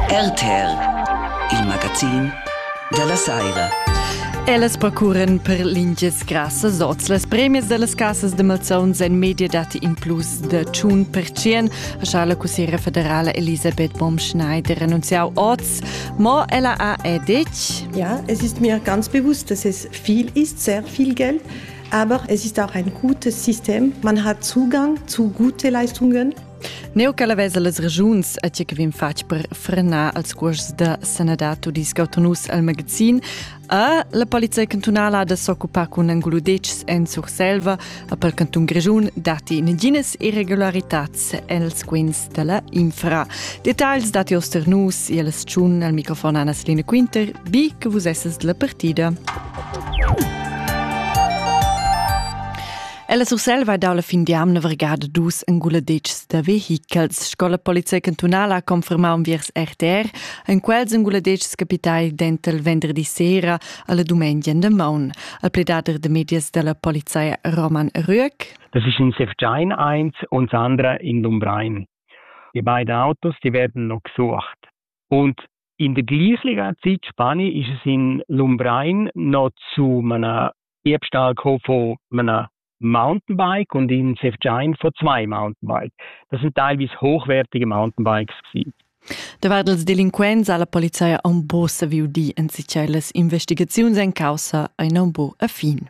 RTR, il magazin dalla Saira. Ellas procuren per lingias grassas oz. Las premias dallas casas de malzauns en media dati in plus de 1%, ha la cussiera federala Elisabeth Baumschneider annunziau oz. Ma ella ha è detg. Ja, es ist mir ganz bewusst, dass es viel ist, sehr viel Geld. Aber es ist auch ein gutes System. Man hat Zugang zu guten Leistungen. Neu che la vesa las regiuns a tge che vin fatg per frenar als cuors da sanadad tudisc autonus al magazin, a la polizia cantunala da s'occupar cun engludetgs en Surselva, a pel cantun Grigiun datti naginas irregularitads els quins da la infra. Details dati osternus e las tschun al microfon Anna Selina Quinter, bi che vus esses della partida. Ella Surselva dalla fin d'amna vergada dus enguladetgs da vehichels. Scola Polizei cantunala ha confermau viers RTR en quels enguladetgs capitai dental venderdi sera alla dumengia de maun. Al pledader de medias della polizei Roman Rüeck. Das ist in Sefjain eins und das andere in Lumbrein. Die beiden Autos, die werden noch gesucht. Und in der gleichen Zeit, Spanien, ist es in Lumbrein noch zu einem Ich stall co vor einer Mountainbike und in Sefjain vor zwei Mountainbikes. Das sind teilweise hochwertige Mountainbikes gewesen. Davart els delinquents ha la polizia un po saviu dir en si las investigaziuns en caussa ein un po a fin.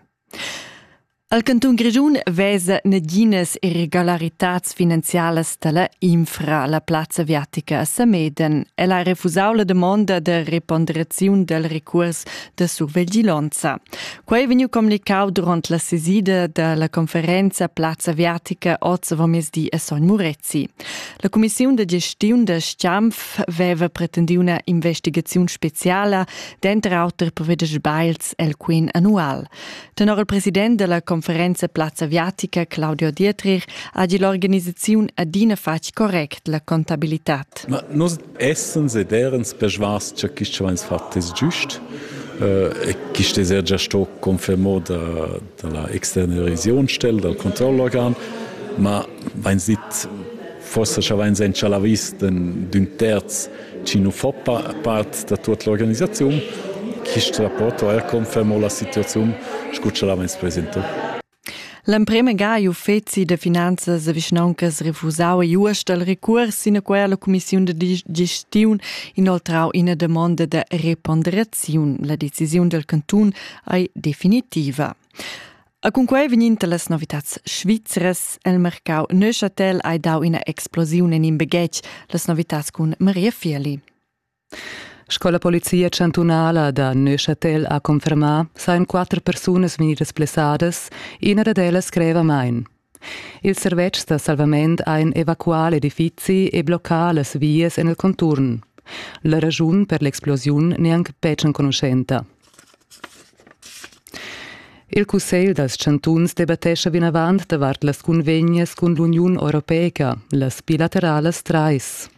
Al canton Grischun vesa naginas irregolaritats finanzialas dalla infra la plazza aviatica a Sameden. El ha refusau la demonda de reponderaziun del recurs de surveglionza. Quei vegniu comunicau duront la sesida della conferenza Plazza Viatica oz avomesdi a Sogn Murezi. La Commissiun de gestiun de Stampf veva pretendiu una investigaziun speciala, denter auter per veder sbails el quin annual. Tenor il president della conferenza Plazza Viatica, Claudio Dietrich, ha gi l'organisaziun adina fatg correct la contabilitad. Ma nus essens ed erens persvas cha quist cha vains fat es giust e quist es eir già sto confermà da da la externalisaziunstelle, dal controllorgan, ma vains dit forsa cha vains inchalà vis d'ün terz chi nu fo part da tuot l'organisaziun. Quist rapport ho eir confermà la situaziun scu cha l'avains presentà. L'emprema ga ei uffeci da finanzas e vischnauncas refusau igl uaust dal recuors sinaquei alla cumissiun da gestiun inoltrau ina damonda da reponderaziun. La decisiun del cantun ei definitiva. A cunquei vegninta las novitats svizras el mercau Neuchâtel hai dau ina explosiun en in baghetg, las novitats cun Maria Fieli. Sco la polizia chantunala da Neuchâtel ha confermà, sajan quatter persunas vegnidas blessadas, ina dad ellas greva main. Ils servetschs da salvament hajan evacuà l'edifizi e bloccà las vias en il conturn. La raschun per l'explosiun n'è anc betg enconuschenta. Il Cussegl dals chantuns debattescha vinavant davart las cunvegnas cun l'Uniun Europeica, las bilateralas trais.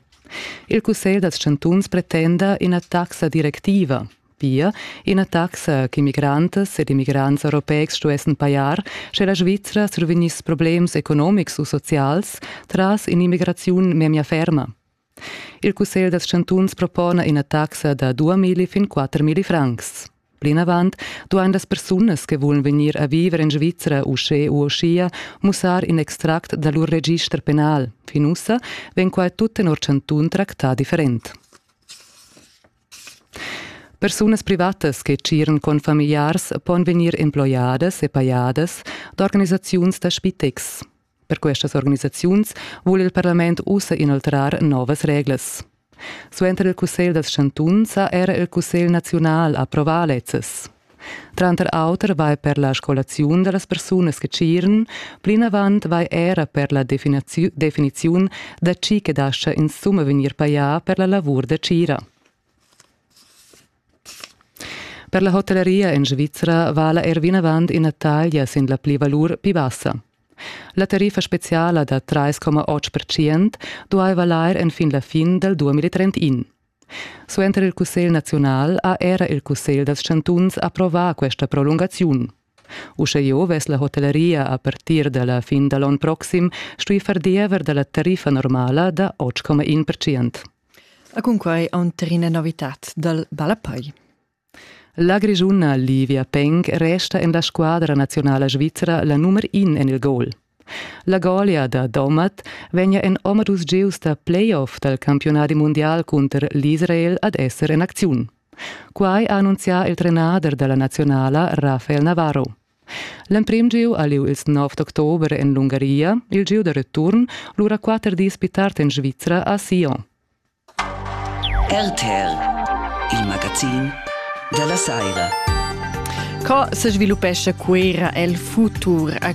Il cussegl dals chantuns pretenda ina taxa directiva, pia ina taxa ch'immigrants ed immigrants europeics stuessen pajar, sche la Svizra survegniss problems economics u socials tras in'immigraziun memia ferma. Il cussegl dals chantuns propona ina taxa da 2000 fin 4000 francs. Plinavant duain las persunas che vulan vegnir a viver en Svizra uschè u uschia mussar in extract da lur register penal. Fin ussa vegn quai tut tenor chantun tractà different. Persunas privatas che tsiren con familiars pon vegnir emploiadas e pajadas d'organisaziuns da spitex. Per questas organisaziuns vul il parlament ussa inoltrar novas reglas. Suenter il Cussegl dals chantuns ha era il Cussegl naziunal approvà lezzes. Tranter auter vai per la scolaziun da las persunas che tsiren, plinavant vai era per la definiziun da tgi che dascha insumma vegnir pajà per la lavur da tgira. Per la hotelleria en Svizra vala er vinavant ina taglia sin la plivalur pli bassa. La tariffa speciala da 3,8% duaiva lair enfin la fin dal 2031. Suenter il Cussegl naziunal ha era il Cussegl dals chantuns approvà questa prolungaziun. Uschè jeu vess la hotelleria a partir dalla fin da l'onn proxim stui far diever dalla tariffa normala da 8,1%. E cun quai aunterina novitad dal Ballapei. La Grischuna Livia Peng resta en la squadra nazionala svizra la nummer in en il goal. La golia da Domat vegnia en omadus gieus da playoff dal campiunadi mundial cunter l'Israel ad esser en acziun. Quai ha annunzià il trenader da la nazionala Rafael Navarro. L'emprim gieu ha lieu ils 9 d'october en l'Ungaria, il gieu da return lura quatter dis pli tard en Svizra a Sion. RTL, il magazin della Saira. Co se sviluppesce quera el futur? A